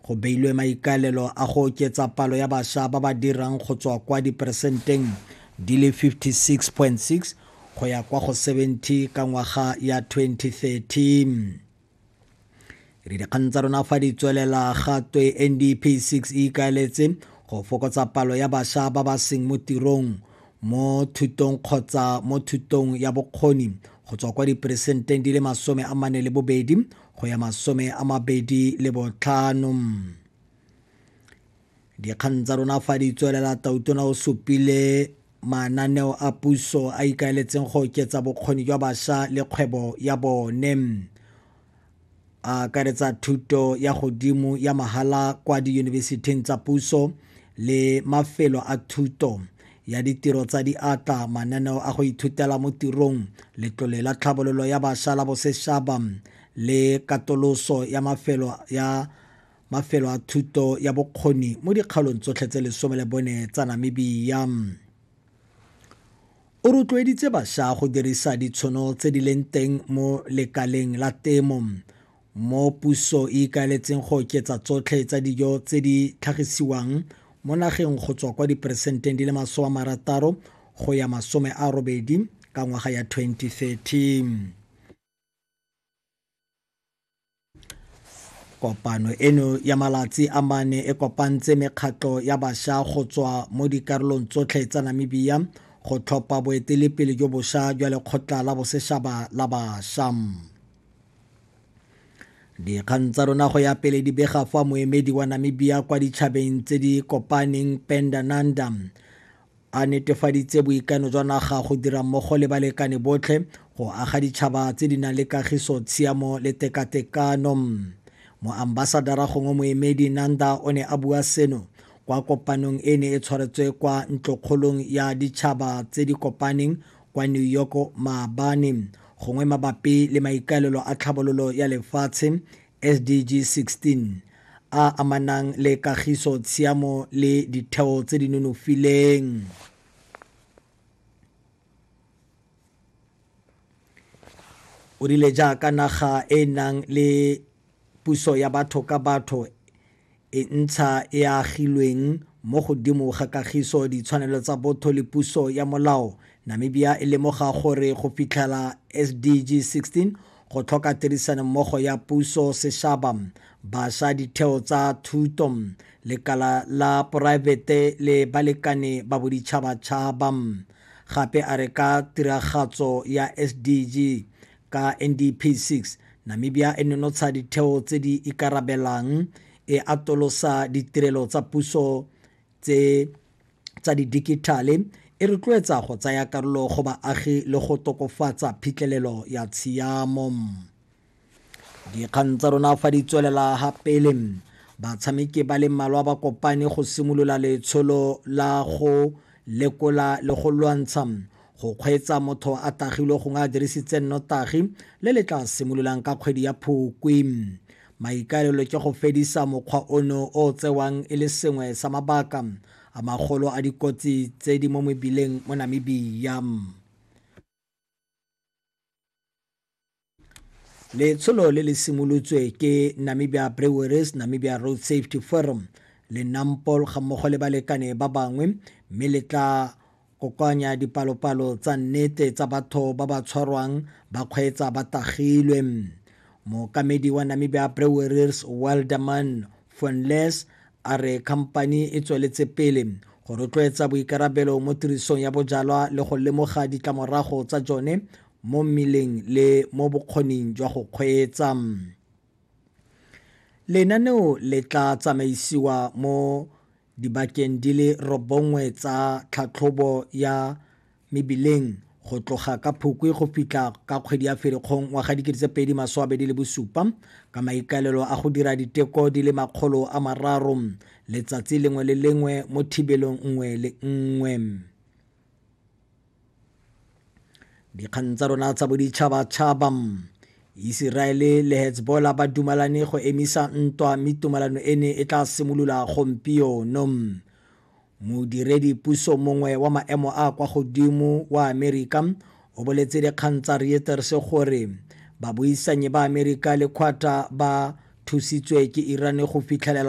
Go beilwe maikaelelo a go oketsa palo ya basha ba ba dirang go tswa kwa diperesenteng di le 56.6 go ya kwa go 70 ka ngwaga ya 2030. Re dikgang tsa rona fa di tswelela ga twe NDP 6 e ikaeletse go fokotsa palo ya basha ba ba seng mo tirong mo thutong kgotsa mo thutong ya bokgoni go tswa kwa diperesenteng di le masome a mane le bobedi go ya masome a mabedi le botlhano dikgang tsa rona fa di tswelela tautona o supile mananeo a puso a ikaeletseng go oketsa bokgoni jwa bašwa le kgwebo ya bone a akaretsa thuto ya godimo ya mahala kwa diyunibesithing tsa puso le mafelo a thuto ya ditiro tsa diatla mananeo a go ithutela mo tirong letlole la tlhabololo ya bašwa la bosešaba le katoloso ya mafelo ya mafelo a thuto ya bokgoni mo dikgaolong tsotlhe tse lesome le bone tsa namibia o rotloeditse bašwa go dirisa ditshono tse di leng teng mo lekaleng la temo mo puso e ikaeletseng go oketsa tsotlhe tsa dijo tse di tlhagisiwang mo nageng go tswa kwa diperesenteng di le masome a marataro go ya masome a robedi ka ngwaga ya 2030 kopano eno ya malatsi a mane e kopantse mekgatlho ya basha go tswa mo dikarolong tsotlhe tsa namibia go tlhopha boetelepele jo bosha jwa lekgotla la boseshaba la basha dikgang tsa rona go ya pele di bega fa moemedi wa namibia kwa ditšhabeng tse di kopaneng pendananda a netefaditse boikano jwa naga go dira mmogo le balekane botlhe go aga ditšhaba tse di nang le kagiso tshiamo le tekatekano moambasadara gongwe moemedi nanda o ne a bua seno kwa kopanong e ne e tshwaretswe kwa ntlokgolong ya ditšhaba tse di kopaneng kwa New York maabane gongwe mabapi le maikaelelo a tlhabololo ya lefatshe SDG 16 a amanang le kagiso tshiamo le ditheo tse di nonofileng o rile jaaka naga e e nang le Puso ya batho ka batho e ntsha e a agilweng mo godimo ga kagiso, ditshwanelo tsa botho le puso ya molao, Namibia e lemoga gore go fitlhela SDG 16 go tlhoka tirisanommogo ya puso, seshaba, basha, ditheo tsa thuto, lekala la poraefete le balekane ba boditšhabatšhaba. Gape a re ka tiragatso ya SDG Ka NDP 6, Namibia e nonotsha ditheo tse di ikarabelang, e atolosa ditirelo tsa puso tse tsa didikithale, e rotloetsa go tsaya karolo go baagi le go tokofatsa phitlhelelo ya tshiamo. Dikgang tsa rona fa di tswelela ha pele batshameki ba le mmalwa ba kopane go simolola letsholo la go lekola le go lwantsha go kgweetsa motho a tagilwe gongwe a dirisitse nnotagi le le tla simololang ka kgwedi ya phokwe maikaelelo ke go fedisa mokgwa ono o tsewang e le sengwe sa mabaka a magolo a dikotsi tse di mo mebileng mo namibia letsholo le le simolotswe ke namibia breweries namibia road safety forum le nampol ga mmogo le balekane ba bangwe mme le tla kokoanya dipalopalo tsa nnete tsa batho ba ba tshwarwang ba kgweetsa ba tagilwe mokamedi wa namibia breweries welderman Fonles a re khamphani e tsweletse pele go rotloetsa boikarabelo mo tirisong ya bojalwa le go lemoga ditlamorago tsa jone mo mmeleng le mo bokgoning jwa go kgweetsa lenaneo le tla tsamaisiwa mo dibakeng di le robongwe tsa tlhatlhobo ya mebileng go tloga ka Phukwi go fitlha ka kgwedi ya Ferikgong wa ga dikete tse pedi maso a bedi le bosupa ka maikaelelo a go dira diteko di le makgolo a mararo letsatsi lengwe le lengwe mo thibelong nngwe le nngwe dikgang tsa rona tsa boditšhabatšhaba iseraele le hezbola ba dumalane go emisa ntwa mme tumalano ene e tla simolola gompieno Modiredi puso mongwe wa maemo a a kwa godimo wa Amerika o boletse dikgang tsa Reuters gore babuisanyi ba Amerika le Qatar ba thusitswe ke Iran go fitlhelela